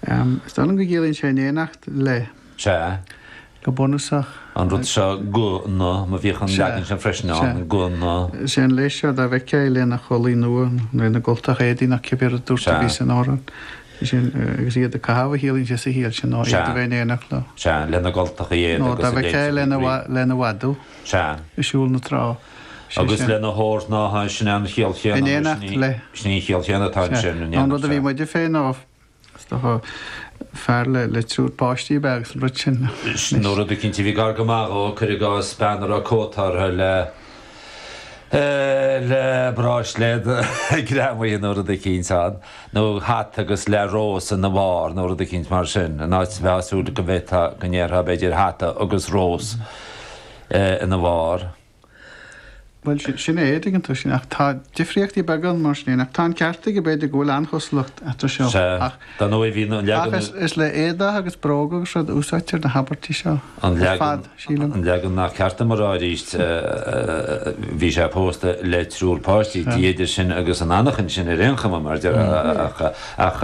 Is dóigh liom go gciallaíonn sé in éineacht le. Sea. Go bunúsach. An rud seo gona, mar bhíodh an leagan sin freisin ann, gona. Is é an le seo dá bhfeictheá é lena chulaith nua nó lena gcultacha éadaí nó cibé rud a dúirt a bhí san amhrán. Is é an, agus iad á gcaitheamh a chiallaíonn sé sa chiall sin ná iad a bheith in éineacht leo. Sea, lena gcultacha éadaí agus a dtéid siad ag rith. Nó dá bhfeictheá é lena, lena mhadadh. Sea. Ag siúl na trá. agus lena hórshnáithe, sin é an chiall chéanna nó sin í an chiall chéanna atá anseo in éineacht. An rud a bhí muide féin á faire le triúr páistí a bheith agus an rud sin. Sin rud eicínt a bhí gar go maith dhó, cuir i gcás, bean a raibh cóta uirthi le bráisléad greamaithe nó rud eicínt ann, nó hata agus le rós ina bharr nó rud eicínt mar sin, in áit a bheith ag súil go ndéarfá b'fhéidir hata agus rós. ina bharr. Bhuel, sin é, tuigeann tú, sin, ach tá difríochtaí beaga ann mar sin fhéin, ach tá an ceart aige, b'fhéidir go bhfuil an-chosúlacht eatarthu seo, ach, ach is, is le éadaigh agus bróga agus rud a úsáidtear na habairtí seo ar fad, sílim. An leagan nach ceart dom a rá aríst, bhí sé pósta le triúr páistí, idir sinn agus an anachain sin ar aon chuma, mar deir, ach, ach,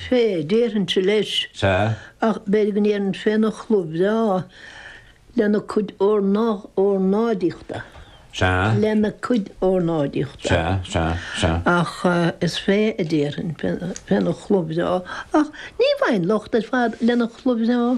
fé, déarfainnse leis. Sea. Ach b'fhéidir go ndéarfainn féna chulaith bhreá, lena cuid órnáidíochta. Sea. Lena cuid órnáidíochta. Sea, sea, sea. Ach is fé a déarfainn, féna chulaith bhreá. Ach ní bhfaighinn locht ar lena chulaith bhreá.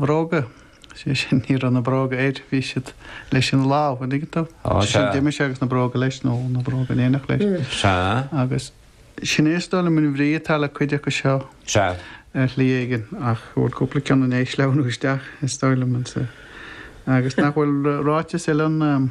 Bhróga, sé sin, ní raibh na bróga air, bhí siad leis ina láimh, an dtuigeann tú? Ó, sé sin, sea. d'imigh sé agus na bróga leis, nó na bróga in éineacht leis. Sea. Agus sin é is dóigh liom an bhrí atá le cuid acu seo Sea. ar shlí éigin, ach go bhfuil cúpla ceann in éis leathnú isteach, is dóigh liom, ansa. Agus nach bhfuil ráiteas eile ann.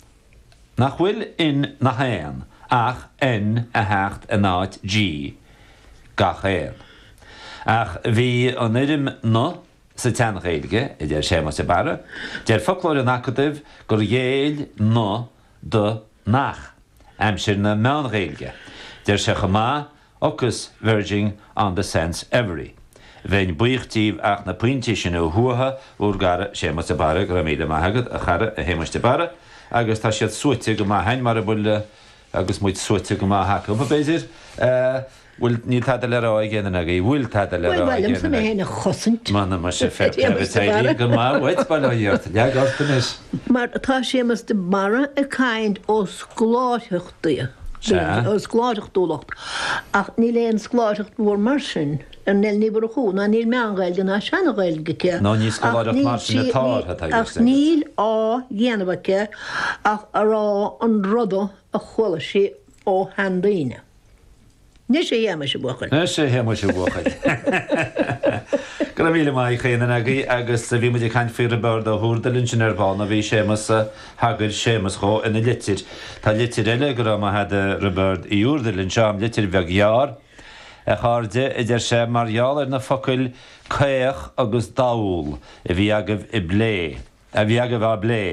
nach bhfuil in nach aon ach N a theacht in áit G gach aon. Ach bhí an fhoirm na sa tSean-Ghaeilge, a deir Séamas de Barra. Deir foclóir an Acadaimh gur ghéill na do nach aimsir na Meán-Ghaeilge. Deir sé chomh maith ocus verging on the sense every Bheinn buíoch díbh ach na pointí sin a shuaitheadh, bhur gcara Séamas de Barra Go raibh míle maith agat, a chara, a Shéamais de Barra. Agus tá siad suaite go maith, hein, mar a bhfuil agus muid suaite go maith acu, b'fhéidir. Bhfuil, níl tada le rá ag éinne agaibh? Bhfuil tada le rá ag éinne agaibh? Bhuel, ba mhaith liomsa mé féin a chosaint. Mana maith sibh, fair play agus éirí go maith uait, bail ó Dhia ort. Lean ort anois. Mar tá Séamas de Barra ag caint os glórtha. Dia. Sea. scoláireachtúlacht. Ach níl aon scoláireacht mhór mar sin ar Nell Ní Mhurchú, ná níl meán-Ghaeilge ná seana-Ghaeilge aici, Ná ní scoláireacht mar sin atá uirthi, tá a fhios agat. ach níl á dhéanamh aici ach a rá an rud a chuala sí ó sheandaoine. Anois a Shéamais a bhuachaill. Anois a Shéamais a bhuachaill. Go raibh míle maith ag chaon duine agaibh agus bhí muid ag caint faoi Roibeárd Ó hÚrdail ansin ar ball, nó bhí Séamas, thagair Séamas dhó ina litir. Tá litir eile, go raibh maith agat a Roibeárd Uí Úrdail, anseo, litir bheag ghearr, A chairde, a deir sé, mar gheall ar na focail 'caoch' agus 'dall' a bhí agaibh i bplé, a bhí agaibh i bplé.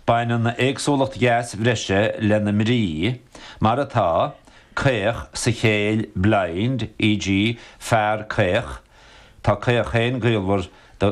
Baineann éagsúlacht dheas bhreise lena mbrí, mar atá, caoch sa chéill, blind, e.g. fear caoch, tá caoch féin gaolmhar do